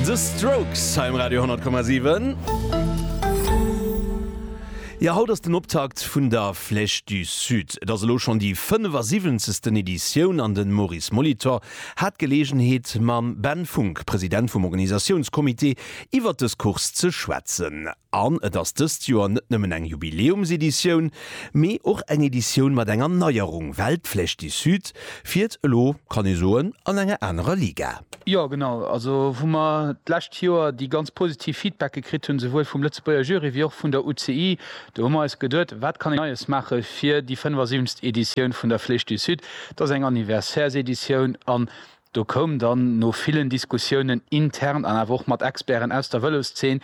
The Strokes hei um Radio 10,7. Jo, haut ass den Optakt vun der Flèche du Sud. Et ass elo schonn déi 75. Editioun an den Maurice Molitor hat d'Geleegenheet mam Ben Funck, President vum Organisatiounscomité, iwwert des Course ze schwätzen. An et ass dëst Joer net nëmmen eng Jubiläumseditioun, mee och eng Editioun mat enger Neierung, well d'Flèche du Sud fiert elo, kann ee soen, an enger anerer Liga. Jo, genau. Also wou mer d'lescht Joer déi ganz positiv Feedbacke kritt hunn, souwuel vum Lëtzebuerger Jury wéi och vun der UCI, do hu mer eis geduet, wat kann een Neies maache fir déi 75. Editioun vun der Flèche du Sud. Dat ass eng Anniversaireseditioun an Do koum dann no villen Diskussiounen intern an awer och mat Experten aus der Vëloszeen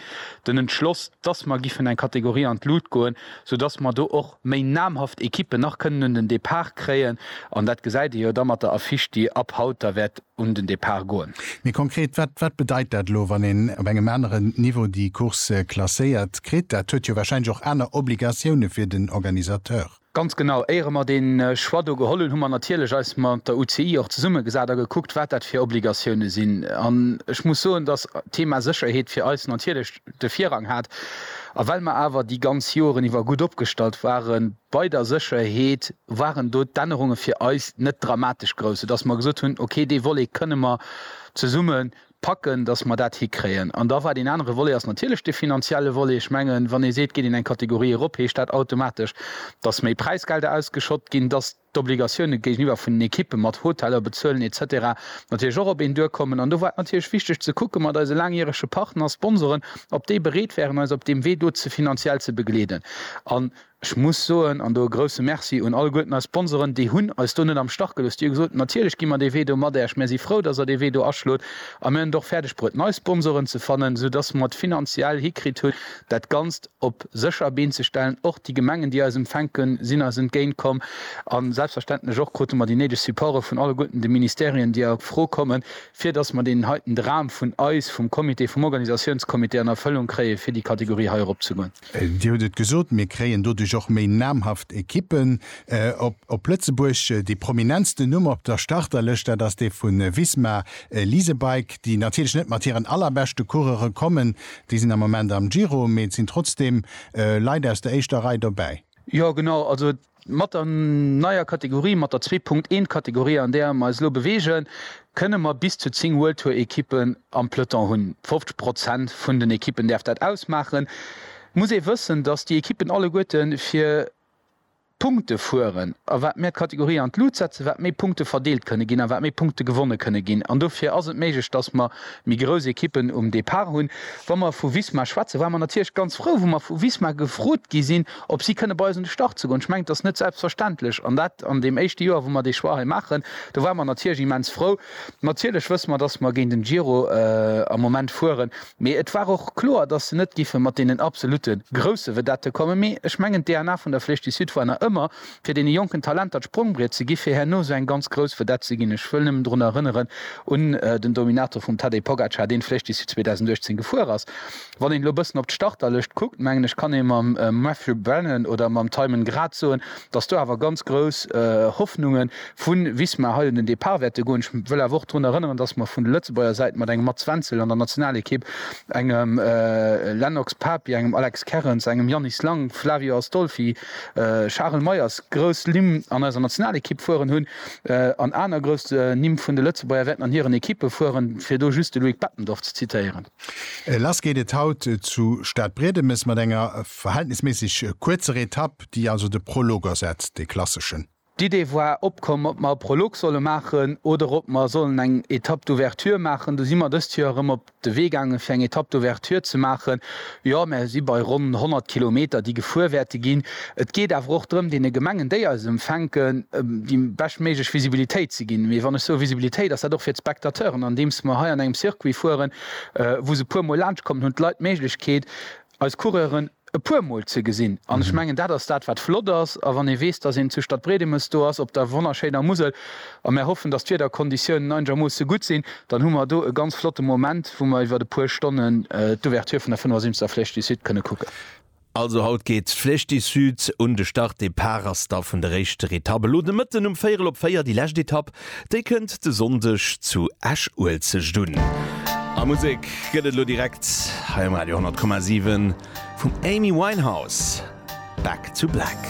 den Entschloss, dass mer giffen eng Kategorie an d'Lut goen, soudass mer do och méi namhaft Ekippen nach kënnen un den Depart kréien. An dat gesäit ee jo da mat der Affiche, déi ab haut da wäert un den Depart goen. Méi konkret, wat wat bedeit dat elo, wann een op engem aneren Niveau déi Course klasséiert kritt? Dat huet jo warscheinlech och aner Obligatioune fir den Organisateur. Ganz genau. Éiere mer deen Choix do geholl hunn, hu mer natierlech eis mat der UCI och zesummegesat a gekuckt, wat dat fir Obligatioune sinn. An ech muss soen, dass d'Thema Sécherheet fir eis natierlech de Virrang hat. A well mer awer déi ganz Joren iwwer gutt opgestallt ware bei der Sécherheet, waren do d'Ännerunge fir eis net dramatesch grouss, soudass mer gesot hunn, okay, dee Volet kënne mer zesumme packen, dass mer dat hikréien. An da war deen anere Volet ass natierlech dee finanzielle Volet. Ech mengen, wann ee seet, geet een eng Kategorie erop, heescht dat automatesch, dass méi Präisgelder ausgeschott ginn, dass d'Obligatioune géigeniwwer vun den Ekippe mat Hoteller bezuelen et cetera natierlech och op een duerkommen. An do war et natierlech wichteg ze kucke mat eise laangjärege Partner, Sponsoren, ob déi bereet wären, eis op deem Wee do finanziell ze begleeden. An. Ech muss soen, an do e grouse Merci un alleguerten eis Sponsoren, déi hunn eis do net am Stach gelooss, déi hu gesot, natierlech gi mer dee Wee do mat Äerch, mär si frou, datt Der dee Wee do aschlot a mär hunn et och fäerdeg bruet nei Sponsoren ze fannen, sou datt mer et finanziell hikritt hunn dat Ganzt op sécher Been ze stellen. Och déi Gemengen, déi eis empfänkt hunn, sinn eis entgéint komm a selbstverständlech och krute mer déi néideg Supporte vun alleguerten de Ministerien, déi a Fro kommen, fir datt mer deen heiten Dram vun eis vum Comité, vum Organisatiounscomité an Erfëllung kréie fir déi Kategorie hei erop ze goen. Dir hutt et gesot, mir kréien doduerch och méi namhaft Equippen op Lëtzebuerg. Dee prominentsten Numm op der Starterlëscht, dat ass dee vu Visma Lease a Bike, déi natierlech net mat hiren allerbeschte Coureure kommen, déi sinn am Moment am Giro, mee et sinn trotzdeem Leit aus der éischter Rei dobäi. Jo genau, also et Mat der neier Kategorie, mat der zwee Punkt eent Kategorie an där mer eis elo beweegen, kënne mer bis zu zéng World Tour Ekippen am Peloton hunn. 50 Prozent vun den Ekippen däerf dat ausmaachen. Muss ee wëssen, datt déi Ekippen alleguerte fir Punkte fueren. A wat mer d'Kategorie an d'Lut setzen, wat méi Punkte verdeelt kënne ginn a wat méi Punkte gewonne kënne ginn. An dofir ass et méiglech, datt mer méi grouss Ekippen um Depart hunn. Wa mer vu Visma schwätzen, ware mer natierlech ganz frou, wou mer vu Visma gefrot gi sinn, ob si kënne bei eis un de Start ze goen. Ech mengen, et ass net selbstverständlech, an dat an deem éischte Joer, wou mer dee Choix hei maachen. Do ware mer natierlech immens frou. Natierlech wësse mer, dass mer géint en Giro am Moment fueren, mee et war och kloer, dass se net géife mat deenen absolute grousse Vedette kommen. Mee ech mengen, d'DNA vun der Flèche du Sud war nach ëmmer, fir deene jonken Talenter d'Sprongbriet ze gi fir herno esou eng ganz grouss Vedette ze ginn. Ech wëll nëmmen drun erënneren un den Dominator vum Tadej Pogacar, deen d'Flèche du Sud 2018 gefuer ass. Wann een elo e bëssen op d'Starterlëscht kuckt, mengen ech kann ee mam Matthew Brennan oder mam Tymon grad soen, datt do awer ganz grouss Hoffnunge vu Visma hei un den Depart wäerte goen. Ech wëll awer och drun erënneren, datt mer vun der Lëtzebuerger Säit mat engem Mats Wenzel an der Nationalekipp, engem Lennox Papi, engem Alex Kerrens, engem Yannis Lang, Flavio Astolfi, Charel Meyers grouss Nimm an eiser Nationalekipp fueren hunn an aner grouss Nimm vun de Lëtzebuerger wäerten an hiren Ekippe fueren, fir do just de Loïc Bettendorf ze zitéieren. Lass geet et haut zu Stadbriedemes mat enger verhältnisméisseg kuerzer Etapp, déi also de Prolog ersetzt, dee klasseschen. D'Idee war opkomm, ob mer e Prolog solle maachen oder ob mer sollen eng Etapp d'ouverture maachen. Du si mer dëst Joer erëm op de Wee gaangen, fir eng Etapp d'ouverture ze maachen. Jo, mer si bei ronn 100 Kilometer, déi gefuer wäerte ginn. Et geet awer och drëm, deene Gemengen, déi eis empfänken, déi beschtméiglech Visibilitéit ze ginn. Mee wann ech soe Visibilitéit, ass dat och fir d'Spectateuren, andeems mer hei an engem Circuit fueren, wou se e puermol laanschtkommen, hunn d'Leit d'Méiglechkeet, eis Coureuren e puermol ze gesinn. An ech mengen, dat ass dat, wat flott ass. A wann ee weess, dass een zu Stadbriedemes do ass, op der wonnerschéiner Musel, a mer hoffen, dass d'Wiederkonditiounen einegermoosse gutt sinn, dann hu mer do e ganz flotte Moment, wou mer iwwert e puer Stonnen d'Ouverture vun der 75. Flèche du Sud kënne kucken. Also haut geet d'Flèche du Sud un de Start, Depart ass da vun der éischter Etapp elo de Mëtten um véierel op véier. Déi lescht Etapp, déi kënnt de Sonndeg zu Esch-Uelzecht un. A Musek gëtt et elo direkt hei um Radio 100,7 vum Amy Winehouse, Back to Black.